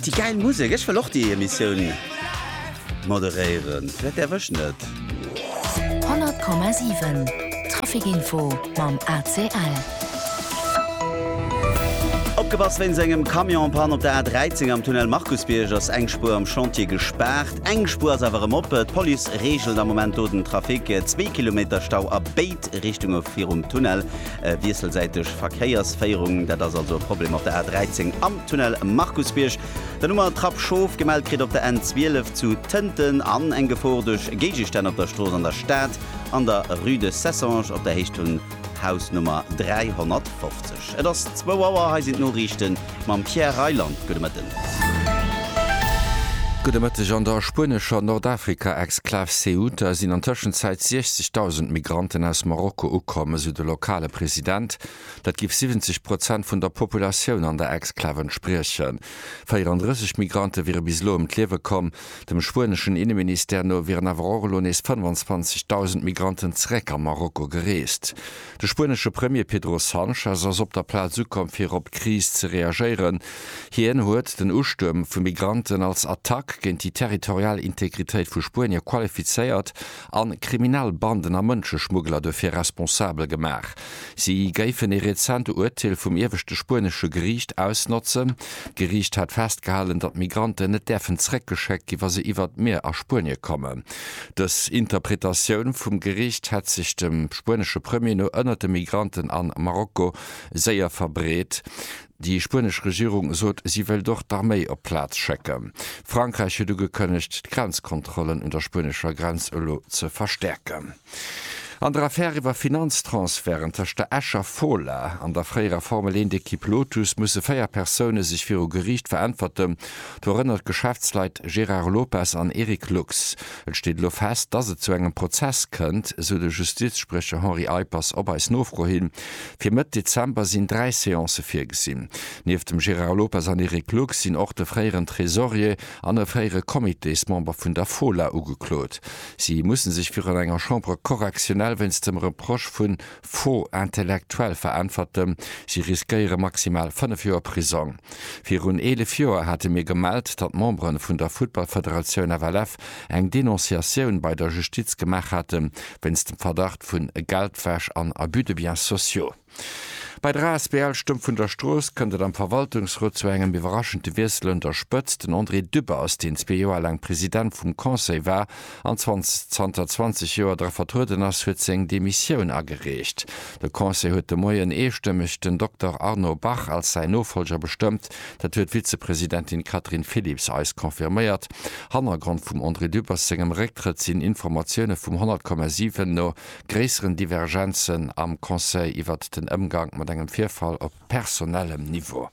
Déi gäil Musek, ech wëll och déi Emissioun moderéieren, vläit däerf ech net. 100,7 Traficinfo mam ACL. Opgepasst, Wéinst engem Camion en panne op der A13 am Tunnel Markusbierg ass eng Spuer am Chantier gespaart. Eng Spuer ass awer erëm op. D'Police reegelt am Moment do den Trafic. Zwee Kilometer Stau a béid Richtunge virum Tunnel. wiesselsäiteg Verkéiersféierung. Dat ass also e Problem op der A 13 am Tunnel Markusbierg. Dann hu mer Trapp Schof, gemellt kritt op der N 12 zu Tënten, an eng Gefor duerch Géigestänn op der Strooss an der Stad an der Rue de Cessange op der Héicht vun Haus Nummer 350. Et ass zwou Auer, hei sinn d'Noriichten. Mam Pierre Reyland, gudde Mëtten. Gudde Mëtteg. An der spuenescher Nordafrika-Exklav Ceuta sinn an Tëschenzäit 60.000 Migranten aus Marokko ukomm, esou de lokale President. Dat géif 70 Prozent vun der Populatioun an der Exklav entspriechen. 34 Migrante wiere bis elo ëm d'Liewe komm. Dem spueneschen Inneministère no wieren awer och elo nees 25.000 Migranten zeréck a Marokko gereest. De spuenesche Premier Pedro Sanchez ass op der Plaz ukomm fir op d'Kris ze reagéieren. Hien huet den Ustuerm vu Migranten als Attack géint déi territorial Integritéit vu Spuenier qualifizéiert a kriminell Banden a Mënscheschmuggler dofir responsabel gemaach. Si géifen ee rezent Urteel vum ieweschte spuenesche Geriicht ausnotzen. D'Geriicht hat festgehalen, datt Migranten net däerfen zeréckgeschéckt gi wa se iwwer d'Mier a Spuenie kommen. Dës Interpretatioun vum Geriicht hätt sech dem spuenesche Premier no ënnert de Migranten a Marokko séier verbreet. Déi spuenesch Regierung sot, si wëllt och d'Arméi op d'Plaz schécken. Frankräich huet ugekënnegt, d'Grenzkontrollen un der spuenescher Grenz elo ze verstäerken. An der Affär iwwer Finanztransferten tëscht der Escher Fola an der fréierer Formel 1 Ekipp Lotus musse 4 Persoune sech viru Geriicht veräntwerten, dorënner d'Geschäftsleit Gérard Lopez an Eric Lux. Et steet elo fest, dass et zu engem Prozess kënnt, esou de Justizspriecher Henri Eippers op eis Nofro hin. Fir Mëtt Dezember sinn dräi Seancë virgesinn. Nieft dem Gérard Lopez an Eric Lux sinn och de fréieren Tresorier an e fréiere Comitésmember vun der Fola ugeklot. Si musse sech virun enger Chambre correctionnelle wéinst dem Reproche vu Faux intellectuel veräntwerten. Si riskéiere maximal fënnef Joer Prisong. Virun eelef Joer hate mir gemellt, datt Membere vun der Futtballfederatioun FLF eng Denonciatioun bei der Justiz gemaach haten, wéinst dem Verdacht vu Geldwäsch an Abus de biens sociaux. Bei der asbl Stëmm vun der Strooss kënnt et am Verwaltungsrot zu engem iwwerraschente Wiessel un der Spëtzt. Den André Dübbe ass deen zwee Joer laang President vum Conseil war an zanter 20 Joer dra vertrueden ass, huet seng Demissioun agereecht. De Conseil huet de Moien eestëmmeg den Dokter Arnaud Bach als säin Nofollger bestëmmt. Dat huet d'Vizepresidentin Catherine Philipps eis confirméiert. Hannergrond vum André Dübbers sengem Récktrëtt sinn Informatioune vum 100,7 no gréisseren Divergenzen am Conseil iwwert den Ëmgank mat engem Virfall op personellem Niveau.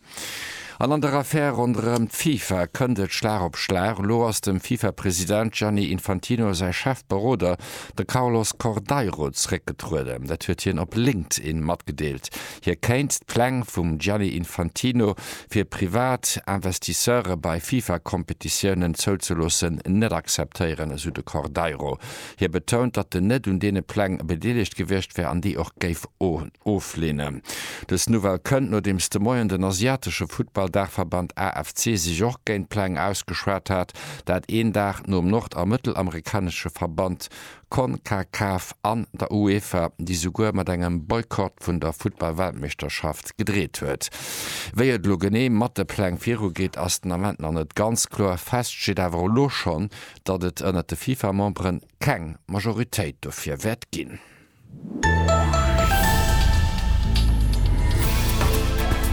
An an der Affär ronderëm d'FIFA kënnt et Schlag op Schlag. Elo ass dem FIFA-President Gianni Infantino säi Chefberoder, de Carlos Cordeiro, zeréckgetrueden. Dat huet hien op LinkedIn matgedeelt. Hie kéint d'Pläng vum Gianni Infantino, fir privat Investisseure bei FIFA-Kompetitiounen zouzeloossen, net akzeptéieren, esou de Cordeiro. Hie betount, datt en net un deene Pläng bedeelegt gewiescht wär an déi och géif ofleenen. Dës Nouvelle kënnt, nodeems de Moien den asiatesche Futtball-Daachverband AFC sech och géint d'Pläng ausgeschwat hat, dat een Dag nom nord a mëttelamerikanesche Verband Concacaf an der UEFA, déi souguer mat engem Boykott vun der Futtball-Weltmeeschterschaft gedreet huet. Wéi et elo genee mat de Pläng virugeet, ass den Ament nach net ganz kloer. Fest steet awer elo schonn, datt et ënnert de FIFA-Memberen keng Majoritéit dofir wäert ginn.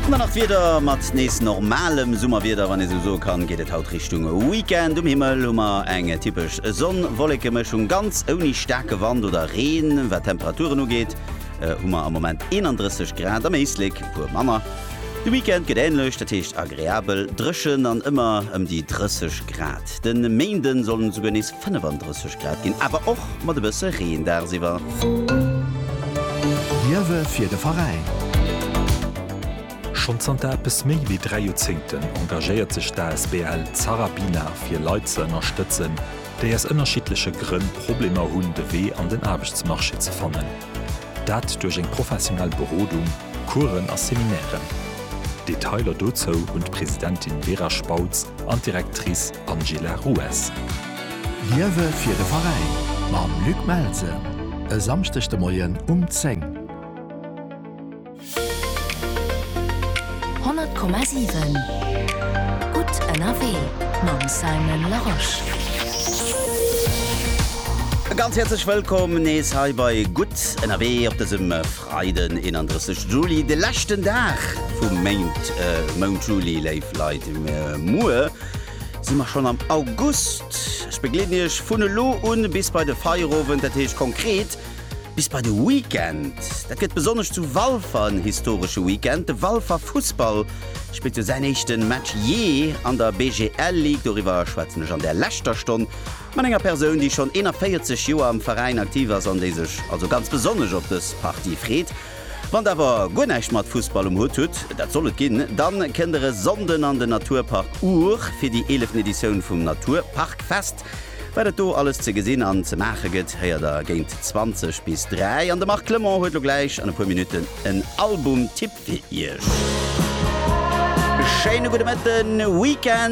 Ëmmer nach d'Wieder, mat nees normalem Summerwieder, wann ee sou soe kann, geet et haut Richtung Weekend. Um Himmel hu mer eng typesch Sonn-Wolleke-Mëschung, ganz ouni staarke Wand oder Reen. Wat d'Temperaturen ugeet, hu mer am Moment 31 Grad, am Éislek e puer manner. De Weekend gëtt änlech, dat heescht agreabel dréchen an ëmmer ëm déi 30 Grad. De Méinde sollen et souguer nees 35 Grad ginn, awer och mat e bësse Reen dagsiwwer. Liewe fir de Veräin! Schonn zanter eppes méi wéi dräi Joerzéngten engagéiert sech d'asbl Zarabina fir Leit ze ënnerstëtzen, déi aus ënnerschiddleche Grënn Problemer hunn, de Wee an den Aarbechtsmarché ze fannen. Dat duerch eng professionell Berodung, Coursen a Seminairen. Detailer dozou hunn d'Presidentin Vera Spautz an d'Directrice Angela Rues. Liewe fir de Veräin mam Luc Melsen e Samschdeg de Moien um 10. 100,7 Gutt ënnerwee mam Simon Larosche. E ganz häerzlech Wëllkomm nees hei bei Gutt ënnerwee op dësem Freiden 31 Juli, de leschten Dag vum Méint, Mount Juli. Léif Leit, muer si mer schonn am August. Ech begleeden Iech vun elo un bis bei de Feierowend, dat heescht konkret, Bis bei de Weekend. Dat gëtt besonnesch zu Walfer en historesche Weekend. De Walfer Fussball spillt jo säin éischte Match jee an der BGL Ligue. Doriwwer schwätzen ech an där leschter Stonn mat enger Persoun, déi schonn 41 Joer am Veräin aktiv ass an déi sech also ganz besonnesch op dës Partie freet. Wann der awer guer näischt mat Fussball um Hutt hutt, dat soll et ginn, dann kënnt der e Sonnden an den Naturpark Our fir déi 11. Editioun vum Naturparkfest. Wat et do alles ze gesinn an ze maache gëtt, héiert der géint 20 bis 3 an de Marc Clement huet lo gläich an e puer Minutten en Album-Tipp fir Iech. Schéine gudde Mëtten, Weekend!